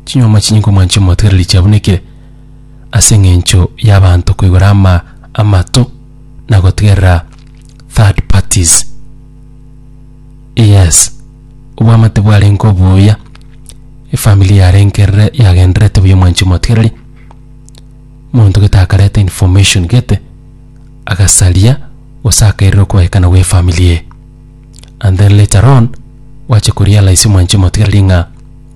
Chinyuoma chinyinge omwanche omotigareri chiabunekire ase engencho y'abanto koigora ama amato na gotigerera third parties. Yes, obwamate bwarenge obuya, efamiri yarengerere yagendererete buya omwanchi omotigareri, monto gete akareta information gete agasaria gose akairera okoegekana gw'efamiri eye and then later on gwacha korealize omwanchi omotigareri ng'a.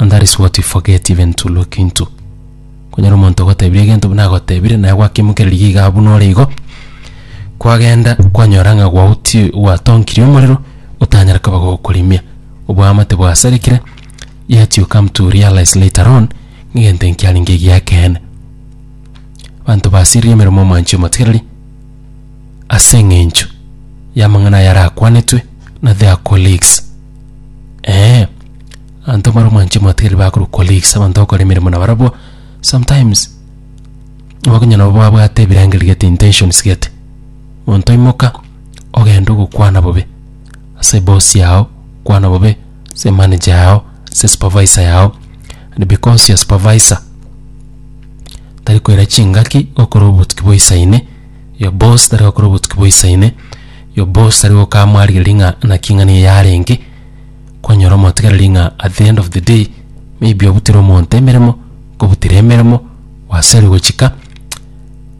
And that is what we forget even to look into. Konyora omonto ogotebirie egento buna agotebire naye gwakimokererigie igaa buna ore igo, kwagenda kwanyora ng'a gwauti gwatonkirie omorero otanyare koba gokorimia. Oboamate bwasarekire yet you come to realize later on ng'a egento eke kiarenge egi'ekeene. Abanto basiririe emeremo ya omwanchi omotigereri ase eng'encho y'amang'ana aya arakwanetwe na their colleagues. Ee, abanto mbare omwanche mobategereri bakorwa colleagues, abanto bakora emeremo nabarabwo, sometimes bakonyora nabo babwate ebirengererio gete intentions gete. Monto oimoka, ogende ogokwana bobe ase eboss yago, kwana bobe ase emanager yago, ase esupervisor yago, and because your supervisor tari koira chingaki, gokora obotuki boisaine. Yo bonsi tari gokora obotuki boisaine, yo bonsi tari gokaa mwarigereria ng'a naki ing'ana eye yarenge, kwanyora omotegereri ng'a at the end of the day, maybe obutire omonto emeremo, kobutire emeremo, gwaseri gochika,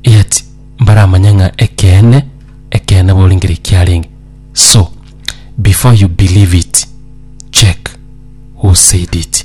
eyet mbaramanye ng'a ekeene, ekeene borenge riria kiarenge. So, before you believe it, check who said it.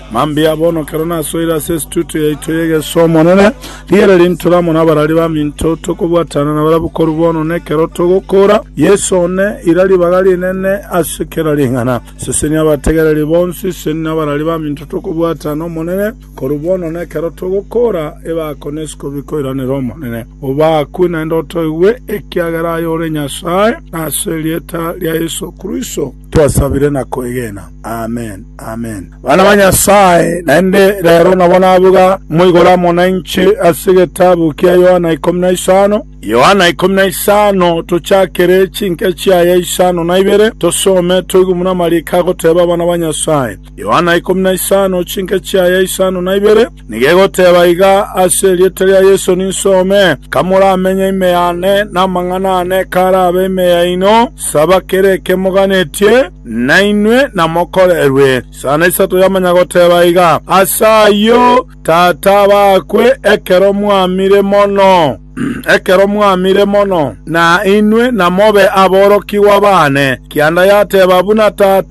Mambia bono ekero nasoire ase estudio yaito y'egesu Omonene, riire rintore amo nabarari baminto, tokobwatana nabarabwo korwa bono na ekero togokoora. Yeso one, ira ribaga rinene ase kera ring'ana. Sesenia abategereri bonsi, seni nabarari baminto tokobwatana Omonene, korwa bono na ekero togokoora, ebako na esikobi koiranere Omonene. Obakwe naende otoigwe, ekiagera aye ore Nyasae, na ase erieta ria Yeso Kristo. Twasabire na kwegena. Amen, amen. Bana ba Nyasae, naende rero nabo nabuga moigoro amo nainche ase egetabu kia Yohana ikomi na isano. Yohana ikomi na isano, tochakere chinke chiaye isano na ibere, tosome toigwe buna amariko agoteba abana ba Nyasae. Yohana ikomi na isano, chinke chiaye isano na ibere, Nigegoteba iga ase erieta ria Yeso ninsome, Kamoramenye ime yane, na amang'ana aane karabe ime yaino, saba kera eke moganetie, nainwe namokorerwe. Sana isato yamanya goteba iga, Ase ayio Tata abakwe ekero mwamire mono, ekero mwamire mono, na inwe namobe aborokigwa baane, kianda yateba buna Tata.